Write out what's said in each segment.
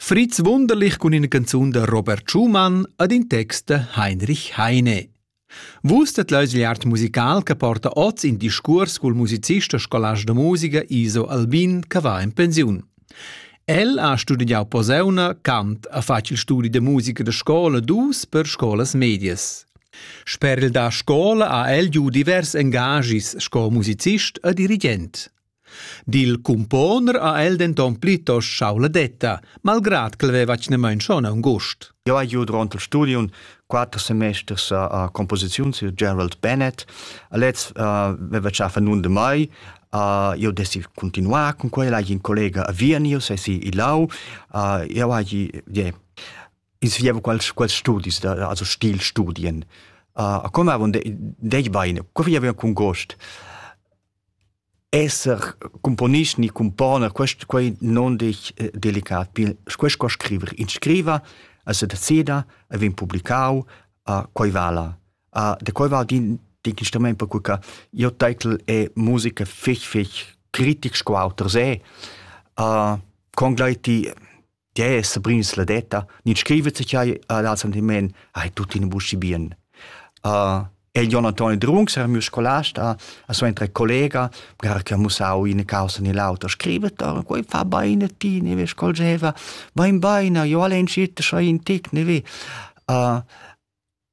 Fritz wunderlich cun ina canzun da Robert Schumann ed in text da Heinrich Heine. Vustet l'ausigliart musical che porta oz in discurs cul musicist e scolast da musica Iso Albin che va in pensiun. El ha studiau poseuna, cant, ha fatg il studi de musica da scola dus per scolas medias. Sper il da scola ha el giu divers engagis sco musicist e dirigent. Dil cumponer ha el denton plitost schau la detta, malgrad ch'el veva tgnamein schon aungust. Jau hai giu durant il studium quatter semesters a composiziun sur Gerald Bennett. A lez veva tschafa nun de mai. Io desi continuar cun quella, hai in collega a Viernio, se si i lau. Jau hai insegnavo quels, quels studis, also Stilstudien. A come avon dei baine, co vi avevan cun gost. Esser cumponist ni cumponer, quest quai non desch delicat pil. Quest co scriver. In scriva, el se decida, el vegn publicau, quei vala. Da quei val din d'inc instrumaint perque che jeu taitel è musica fich fich critic sco auter se. Con gleiti Tgè è Sabrins la detta? Nid scrivet se chai ad al sentiment, ai tutti in buschi bien. Uh, el Jon Antoni Drungs era mio scolasta, a sua entra collega, gara che ha mussau in causa ni l'auto, scrivet, quei fa baine ti, ne ve scolgeva, bain baina, io alle incite, so in tic, ne ve. Uh,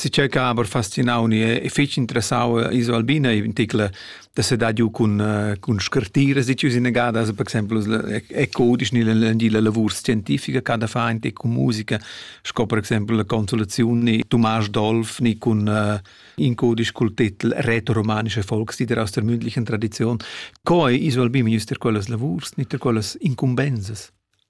Si circa aber fascinau ni è fich interessau iso Albina in tickla da se dà giu cun cun scartiras di chius inagadas per exemplu è codisch ni la lavur scientifica che da fa anche con musica sco per exemplu la consolazione ni Thomas Dolf ni cun in codisch col titel retroromanische Volkslieder aus der mündlichen Tradition co iso Albina jus ter quellas lavurs ni ter quellas incumbensas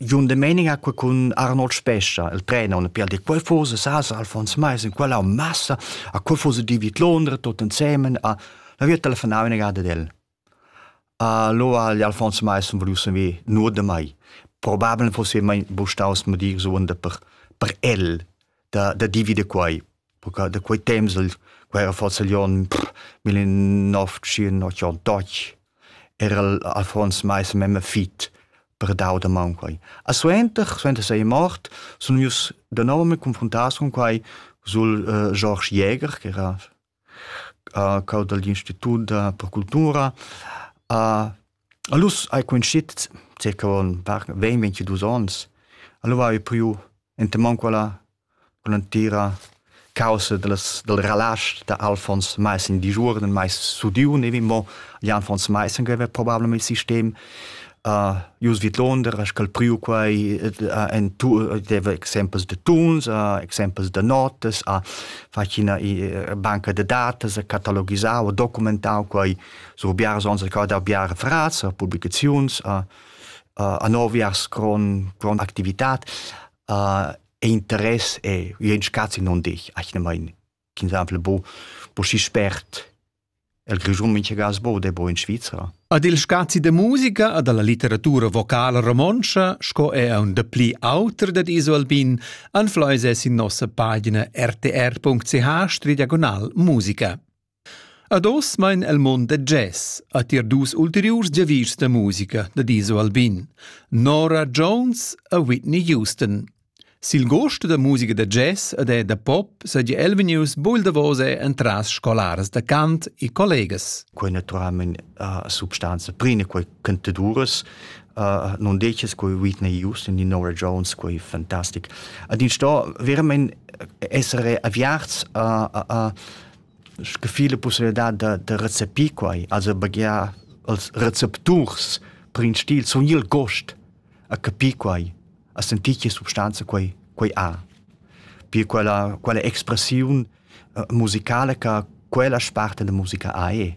Jon Domenica qua cun Arnold Spescha. El prenaun per dir quai forsa sas Alfons Mais in quella massa a quel forsa David Londra tot ensemen a la via telefonau ina gada del. Allora gli Alfons Mais sun volius saver nur da mai. Probabel fosse mai bu staus mo dir suonda per per el da da divider quai. perché da quei temps il quei era forsa gli on millennove-tschient-ochantotg era il Alfons mais memme fit per dau da maun quei. A suenter, suenter sei mort, sun ius da nov me confrontas con quai sul uh, George Jäger, che era uh, cau dagli Institut per Cultura, a Allus hai cunschit circa ventg ventidus ons. Alura hai priu enta maun quella cun l'entira caussa dallas dal relasch da Alfons Maissen digiuorn, mais sudiu nevi mo Jan Fons Maissen che haveva probablamain il sistem. Uh, Jus vidlonder ha sch'el priu quei uh, en tu, deva exempels de tuns, uh, exempels de notas, ha fatg ina banca de datas, ha catalogisau, ha documentau quei sur biars ons ca da biar fraz a publicaziuns a, a, a noviars con, con activitat a, e interess e ien scazzi non dich ach ne mein exemple bo bo si spert el Grischun mincha gas bo de bo in Svizzera Ad il scazi de musica ad alla litteratura vocala romontscha, sco è un de pli auter dad Iso Albin, anfleuse sin nossa pagina rtr.ch stridiagonal musica. Ad oz mein el mond da jazz, ha tier dus ulteriurs giavischs da musica da Diso Albin, Nora Jones e Whitney Houston. Sil gost da musica da jazz ed è da pop seigi el vegnius buil davos entras scolaras da cant e collegas. Quei naturalment uh, substanza prima quei cantaduras uh, non decis quei Whitney Houston di Nora Jones quei fantastic. Ad in sto veramente essere avviarts uh, uh, uh, Sche fi la pussibilità da da recepir quai, also baghiar els recepturs per in stil sun gnir gust a capir quai, a sentir che substanza quai quai ha. Pir quella quella expressiun musicala cha quella sparta da musica ha e.